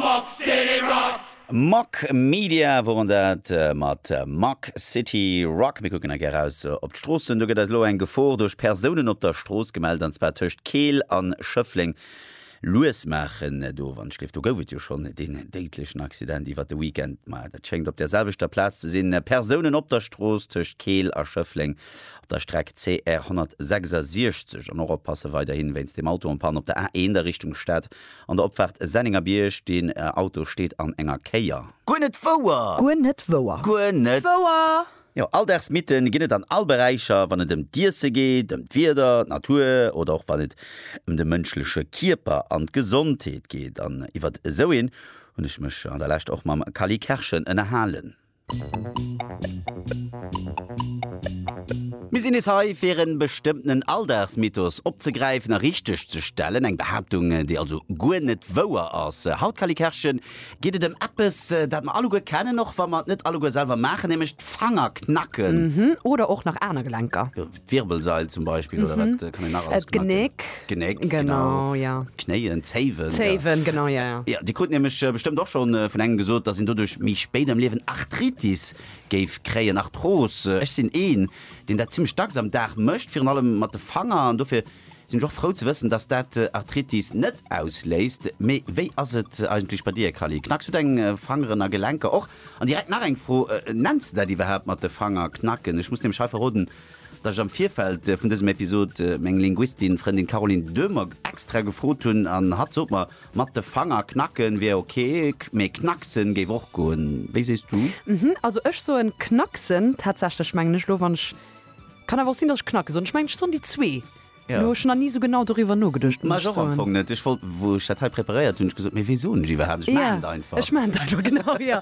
Box City Rock. Mack Media woren dat mat Mack City Rock. Mir kucken gär raus op d'Stroossen. Do gëtt eis elo eng Gefor duerch Persounen op der Strooss gemellt, an zwar tëscht Keel an Schëffleng. Lues maachen do, wann ech gleef. Do gouf et jo schonn deen déidlechen Accident iwwert de Weekend. Ma dat schéngt op der selwechter Plaz ze sinn. Persounen op der Strooss tëscht Keel a Schëffleng op der Streck CR 166. An och oppasse weiderhin wéinst dem Auto en panne op der A1 a Richtung Stad. An der Opfahrt Sennengerbierg, deen Auto steet an enger Kéier. Guer net wouer! Guer net wouer! Guer net wouer! Jo, alldags Mythen ginn et an all Beräicher, wann et ëm d'Iessen geet, ëm d'Wieder, d'Natur oder och wann et ëm de mënschleche Kierper an d'Gesondheet geet. An iwwert esou een hunn ech mech an der Lescht och mam Kally Kerschen ënnerhalen. Mir sinn nees hei, fir e bestëmmtenen Alldagsmythos opzegräifen a richteg ze stellen. Eng Behaaptung, déi also guer net wouer ass. Haut, Cally Kerschen, geet et ëm eppes, dat mer alleguer kennen, och wa mer et net alleguer selwer maachen, nämlech d'Fanger knacken. Oder och nach aner Gelenker. D'Wirbelsail zum Beispill oder wat kann een nach alles gemaach ginn? D'Genéck. Genéck, genau. Genau, ja. Knéien, Zéiwen. ja. Zéiwen, genau, ja, ja. Ja, Dir krut nämlech bestëmmt och schonn vun engem gesot, dass een doduerch méi spéit am Liewen Arthritis géif kréien, Arthros. Ech sinn een, deen dat zimmlech dacks am Dag mécht, virun allem mat de Fanger an dofir. Sinn ech och frou ze wëssen dass dat Arthritis net ausléist. Mee wéi ass et eigentlech bei dir Kally? Knacks du deng Fangeren a Gelenker och? An direkt nach eng Fro, Nenns de dat iwwerhaapt mat de Fanger knacken? Ech muss nämlech hei verroden dass ech am Virfeld vun dësem Episod meng Linguistin Frëndin Caroline Döhmer extra gefrot hunn an hatt sot mer mat de Fanger knacken wier ok, mee knacksen géif och goen. Wéi sees du? Also ech soen knacksen tatsächlech mengen ech lo wann ech Kann awer och sinn dass ech Knackes soen, ech mengen ech soen déi zwee. Lo hu ech nach ni sou genau doriwwer nogeduecht, muss ech soen. Ech wollt, wou ech dat hei preparéiert hunn, ech gesot, mee wéi soen ech iwwerhaapt, ech maachen et einfach. Ech maachen et einfach, genau, jo.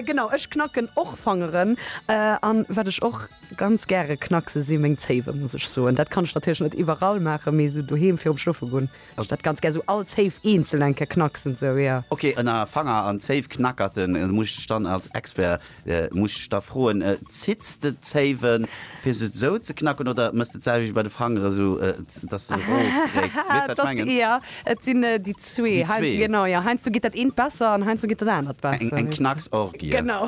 Genau, ech knacken och Fangeren. An wat ech och ganz gäre knackse si meng Zéiwe, muss ech soen. Dat kann ech natierlech net iwwerall maachen, mee sou doheem virum Schlofe goen, Ech dat ganz gär sou all Zéif eenzel eng Kéier knacksen sou jo. Ok ënner Fanger an Zéif knackerten muss ech dann als Expert muss ech da froen zitts de d'Zéiwen fir se sou ze knacken oder mëss de d'Zäiwe bei de Fangeren sou dass de se rof kréicks? Weess wat ech mengen? Jo et sinn déi zwee. Déi zwee? Genau jo heiansdo geet dat eent besser an heiansdo geet dat anert besser. Eng Knacksorgie. Genau.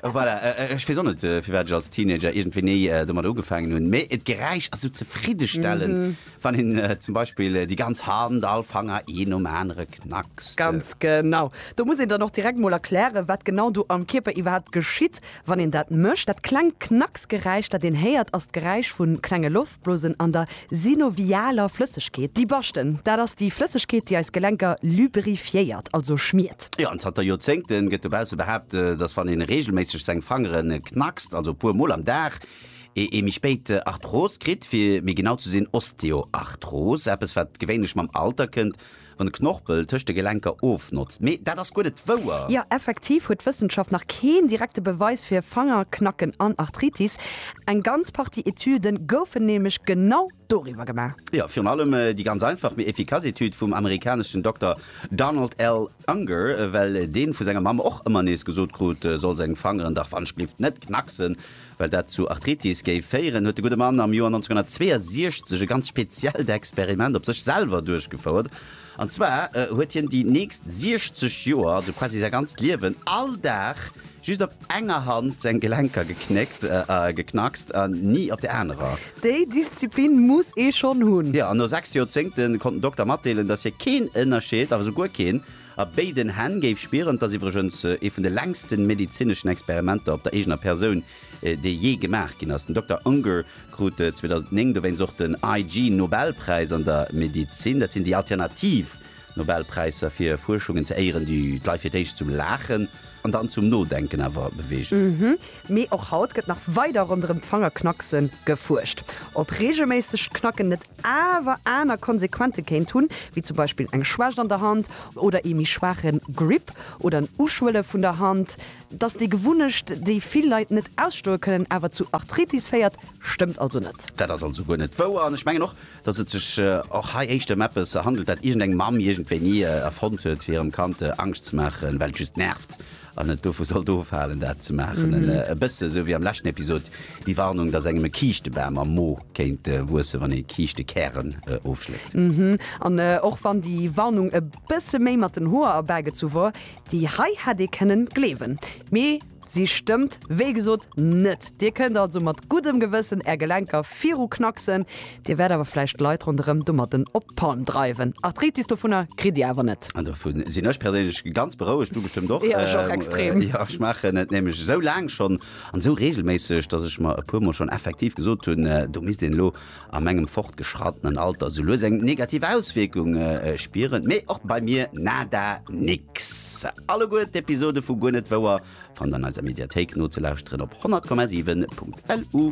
Voilà ech weess och net firwat ech als Teenager iergendwéi ni domat ugefaangen hunn mee d'Geräisch ass sou zefriddestellend Wann een zum Beispill déi ganz Hand, all Fanger een nom anere knackst. Ganz genau. Do muss een dann och direkt mol erklären, wat genau do am Kierper iwwerhaapt geschitt, wann een dat mécht. Dat klengt Knacksgeräisch, dat een héiert, ass d'Geräisch vu klenge Loftblosen an der synovialer Flëssegkeet. Déi Baschten, dat ass déi Flëssegkeet, déi eis Gelenker lubrifiéiert, also schmiert. Jo, an zanter Joerzéngte gëtt dobausse behaapt, dass wann ee reegelméisseg seng Fangere knackst, also e puer mol am Dag, ee ee méi spéit Arthros kritt, fir méi genau ze sinn Osteoarthros, eppes wat gewéinlech mam Alter kënnt, wann de Knorpel tëscht de Gelenker ofnotzt. Mee dat ass guer net wouer. Jo, effektiv huet d'Wëssenschaft nach keen direkte Beweis fir Fangerknacken an Arthritis. Eng ganz Partie Etüde goufen nämlech genau doriwwer gemaach. Jo, virun allem déi ganz einfach mee efficace Etüd vum amerikaneschen Dokter Donald L. Unger, well deen vu senger Mamm och ëmmer nees gesot krut, e soll seng Fangeren dach wanschlift net knacksen, well dat zu Arthritis géif féieren, huet de gudde Mann am Joer 1962 e ganz speziellt Experiment op sech selwer duerchgefouert. An zwar huet hien déi nächst 60 Joer, also quasi säi ganzt Liewen, all Dag just op enger Hand seng Gelenker geknéckt, geknackst, an ni op der anerer. Déi Disziplin muss ee schonn hunn! Jo, an no 6 Joerzéngte konnt den Dokter matdeelen, dass hie keen Ënnerscheed, awer esou guer keen, a béiden Hänn géif spieren. Et ass iwwregens ee vun de längste medezineschen Experimenter op der eegener Persoun, dee jee gemaach ginn ass. Den Dokter Unger krut 2009 dowéinst och den IG Nobelpräis an der Medezin. Dat sinn déi alternativ Nobelpräisser fir Fuerschungen ze éieren, déi d'Leit fir d'éischt zum Laachen an dann zum Nodenken awer beweegen. Mee och haut gëtt nach weider ronderëm d'Fangerknackse gefuerscht. Ob reegelméissegt Knacken net awer aner Konsequente kéint hunn, wéi zum Beispill eng Schwächt an der Hand oder ee méi schwaache Grip oder en Uschwëlle vun der Hand. Dass déi Gewunnecht, déi vill Leit net ausstoe kënnen, awer zu Arthritis féiert, stëmmt also net. Dat ass also guer net wouer. An ech mengen och, dass et sech och hei éischter ëm eppes handelt, dat iergendeng Mamm iergendwéini erfonnt huet, fir hirem Kand Angscht ze maachen, well et just nervt an et dovu sollt ofhalen, dat ze maachen. E bësse sou wéi am leschten Episod déi Warnung, dass engem e Kiischtebam am Mo kéint wuessen, wann ee Kiischtekären ofschléckt. An och wann déi Warnung e bësse méi mat den Hoer erbägezu wor, Déi hei hätt ee kënnen gleewen, mee si stëmmt wéi gesot net. Dir kënnt also mat guddem Gewëssen är Gelenker viru knacksen, dir wäert awer vläicht d'Leit ronderëm domatten op d'Palm dreiwen. Arthritis dovunner kritt dir awer net. An dovu sinn ech perséinlech ganz berouegt, du bestëmmt och. Jo, ech och extrem. Jo, ech maachen et nämlech esou laang schonn an esou reegelméisseg, dass ech mer e puer mol schonn effektiv gesot hunn, do misst een elo a mengem fortgeschrattenen Alter sou lues eng negativ Auswierkung spieren, mee och bei mir nada nix. Alleguer d'Episode vu Guer net wouer fannt an eiser Mediathéik nozelauschteren op 100,7.lu.